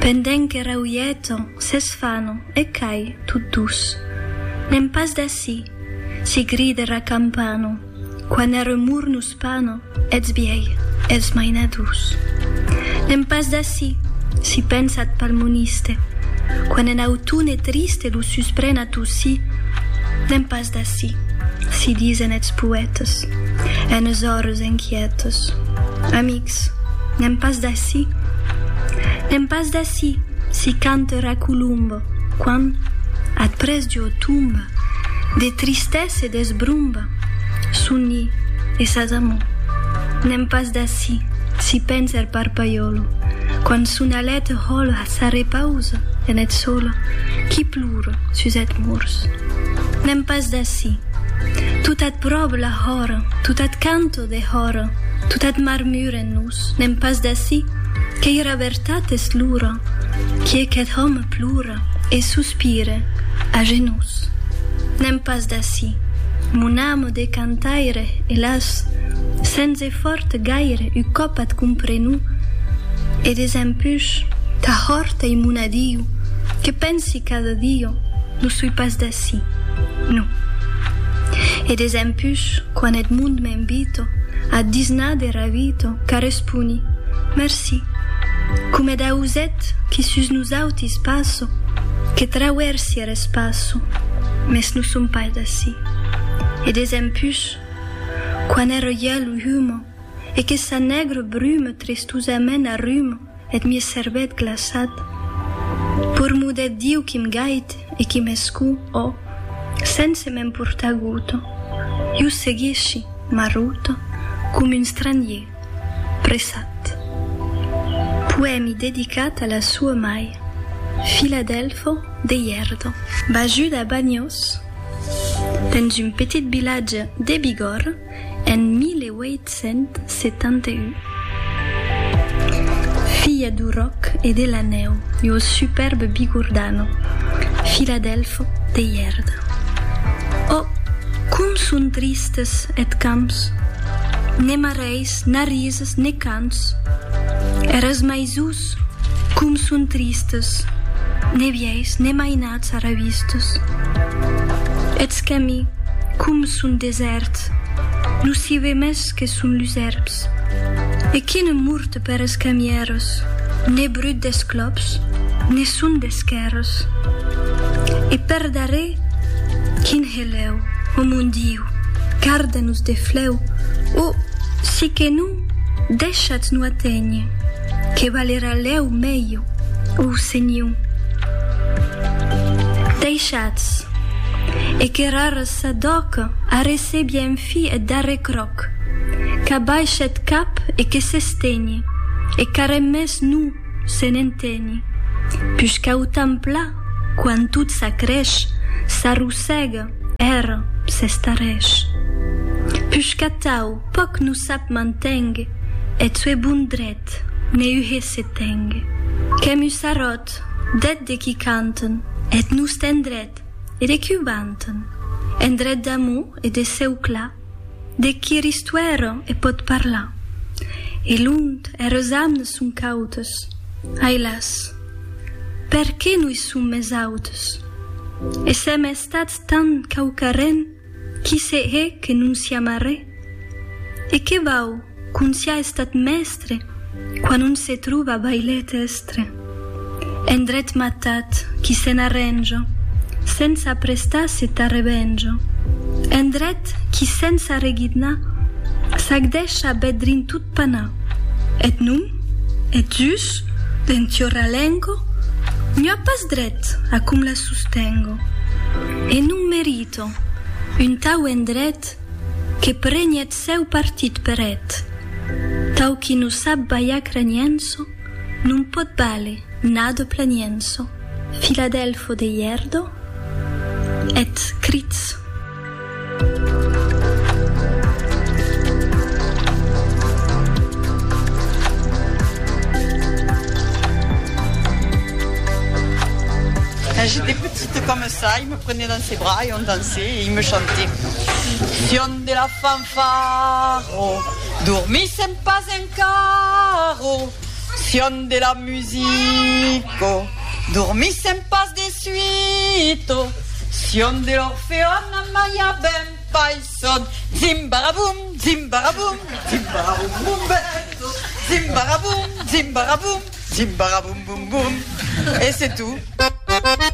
Pendent que rauieton, s'esfanon, e cai, tot dus. N'èm pas d'ací! si gride ra campano, quan er remor nos pano, eths biei, eths mainadors. N'èm pas d'ací! si pensa ath palmoniste, quan en autone triste lo suspren a tossí. N'èm pas d'ací! si disen eths poètes, enes ores enquietes. Amic! Ps, n'èm pas d'ací. N'èm pas d'ací, si cante Ra Colombe, quand, ath près d'ua tomba, de tristesa e d'esbromba, soni e s'asamó. N'èm pas d'ací, si pensa er Parpaiòlo, quand son alet hòla s'arrepausa en eth sòla qui plora sus eth mors. N'èm pas d'ací. Tot ath pròp la hòra, tot ath cante lo dehòra, tot eth marmur en nos, n'èm pas d'ací, qu'ei era vertat es l'ura, quie qu'eth òme plora e sospire, a genús. N'èm pas d'ací, mon ame de cantaire, elàs, sens efòrt gaire un còp at comprenu, e desempush, tà hòrt ei mon adiu, que pensi cada dia, Non soi pas d'ací, non. E desempús, quan Edmond m'invito ath disnar de Ravito, qu'arresponi, Merci, coma eth auset qui sus nosautis passo, que trauersi er espaço, mès non som pas d'ací. E desempús, quan er hièl humo e que sa nègra bruma tristosament arruma, Eth mies cervèth glaçat purmudèth Diu qui m' gait e qui m'escu, o, sense me'n portar guto, jo seguishi marruto com un stranhier pressat. Poèmi dedicat a la sua mai, Filadelfo de Ièrdo. Bajut a Banhos, dens un petit vilatge de Bigòrre, En 1871, filha du ròc e de la nèu e au superbe Bigordano, Filadèlfo de Ièrda. Ò, com son tristes eth camps! Ne marrèis, na rises, ne cants! Eras maisús! Sus. Com son tristes, ne vièis ne mainats arravistes. Eths cami, com son desèrts, non s'i ve mès que son lus èrbs. E qui ne morte per es camières, ne brut des clops, ne son d'esquèrres. E per darrèr, quin helèu, o mon Diu, garda-nos de flèu, o, si que non, deishat-nos aténher. Que valerà lèu mèiu, o senhor. Deishatz, e que rares sa dòca a recebi en fi eth darrèr cròc, qu'abaishe eth cap e que s'estenhe, e qu'arren mès non se n'entenhe, pus qu'autam pla, quan tot s'acrèsh, s'arrossèga, ère, s'estarrèsh. Pus qu'atau. Pòc no sap mantèngue. Eth sue bon dret, ne uhe se tèngue. Qu'èm un sarròt, d'eth de qui canten, eth nust endret, e de qui o vanten. Endret d'amor e de cèu clar, de qui er istuèra e pòt parlar. E lont, eres amnes son cautes. Ai las! Perqué no i som mès autes? E sèm estats tant cauquarren. Qui se hè que non siá marré? E que vau qu'on siá estat mèstre quan on se trova bailet èstre? En dret matat qui se n'arrènjo sens aprestar se tà revenjo, en dret qui sens arreguidnar s'ac dèsha bèth drin tot panar. Eth nom, eth jus, d'en Tiorra Lengo, n'ua pas dret a com la sostengo, e non merita Ethto, un tau endret que preni eth seu partit per eth tau qui non sap balhar cranienso non pòt vàler nado planienso Filadelfo de Ièrdo eth crits. Prenez dans ses bras et on dansait et il me chantait Sion de la fanfaro dormis en pas encaro Sion de la musico dormis en pas de suito Sion de l'orpheon a maia ben fai son Zimbaraboum zimbaraboum zimbaraboum boum bèto Zimbaraboum zimbaraboum zimbaraboum boum boum Et c'est tout.